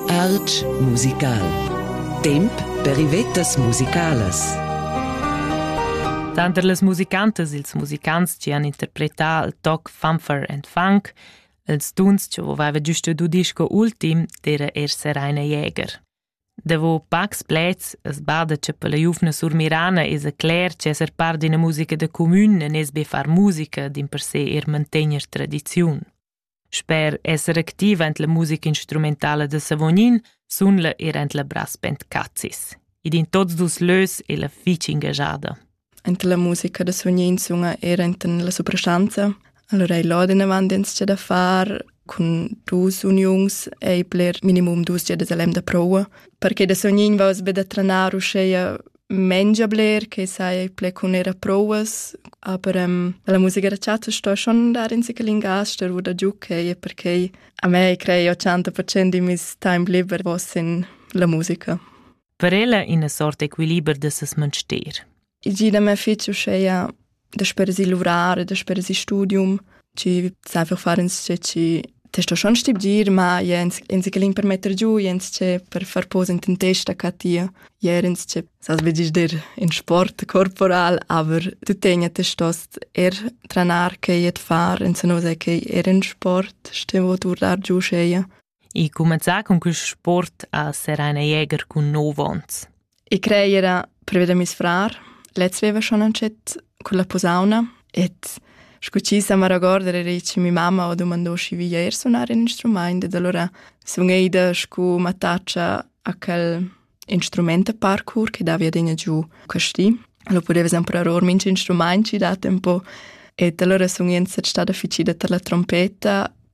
Art musical. Temp per ivettas musicalas. Tanter las musicantas ils musicants chi han interpretà il toc Funfer and Funk, ils tuns chi aveva giusto du disco ultim, d'eira eir Seraina Jäger. Davo pacs pleds es bada cha per la giuvna surmirana esa cler chi esser part d'üna musica da cumün e nes be far musica dimpersè eir mantegner tradiziun. Sper esser activa en la musica instrumentala da Savognin sun la er en la brass band Cazis. Ed in tots dus lös è la fich engagiada. Anche la musica da Savognin sunga era enten la soprastanza. Allora ei laden avant ins da far cun dus uniuns ei bler minimum dus giadas a lem da proua perché da Sognin va os be da tranar uscheia mengia bler che sai ple cun era prouas, aber ähm, la musica da chatta sto schon dar in sichel in gas der wo da giucche e perché a me crei 80% di mis time liber vos in la musica. Per ella ina sorta equiliber de ses menster. I gida me fici uscheia dasper si luvrar, dasper si studium, ci sai einfach fare insce ci testo schon stibgir, ma jens ensi che l'in per metter giù, jens ce per far posa in ten testa ca tia, jerens ce sas vegis der in sport corporal, aber tu tegna te stost er tranar che jet far, en se no sai che er in sport stevo turlar giù scheia. e cumanzà cun quist sport a serrar ina jäger cun nov ons. I crei era prever da mis frar. Lez veva schon ancet con la posauna et scu ci sa maragorder era che mi mamma ho domandò schi via er sunar in instrument ed allora sun eida scu mattaccia a quel instrument a parkour che davia degna giù casti. Lo poteva sempre or minch instrument ci dat un po. Et allora sun ien stat tada ficida tar la trompeta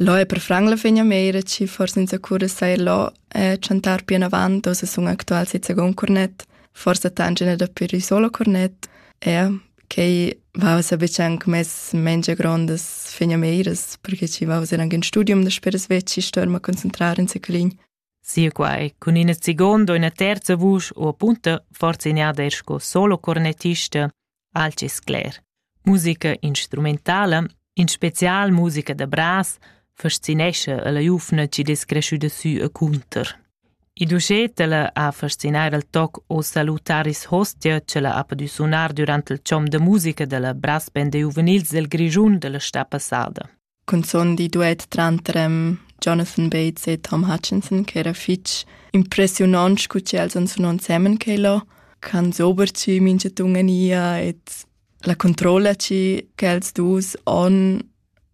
Lo è per franc la fegna meira chi forsa inzacura sai lo e chantar pianavant ossa sun actual sezza gon cornet, forsa tangina da pir i solo cornet, e quei va sa betg anc mess mengia grondas fegna meiras, perché ci va eran in studium da speras vecci storma concentrar in siclin. Sinquai cun ina segonda o ina terza vusch u apunta forzignada er sco solo cornettista, alch es cler. Musica instrumentala, in special musica da bras, fascinescha la giuvna chi dess creschüda sü e cunter. Il ducetela ha fascinar al toc O salutaris hostia che la ha podü sunar durant il chom da musica da la brass band juvenils del Grischun della sta passada. cunzun di duet tranter em Jonathan Bates e Tom Hutchinson che era fitg impressiunant scu che els han sunà ensemen che lo can sober ci mincha tungania et la controlla ci che els dus on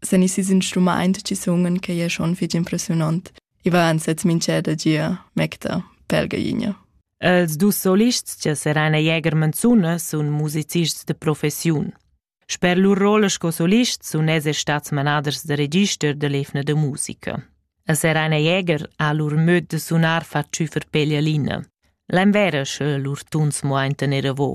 sen i sis instrumaint ci sungen che è schon fitg impressionant. I va ansets mincha da gia mecta pelgainia. Els dus solists che seran a Jäger Manzuna sun musicists de professiun. Sper lur rolla sco solist sun els er stats manaders da register da l'evna da musica. A Serena Jäger ha lur möd da sunar fat tschüfer peglialina. L'envera sche lur tuns mo ein tener avo.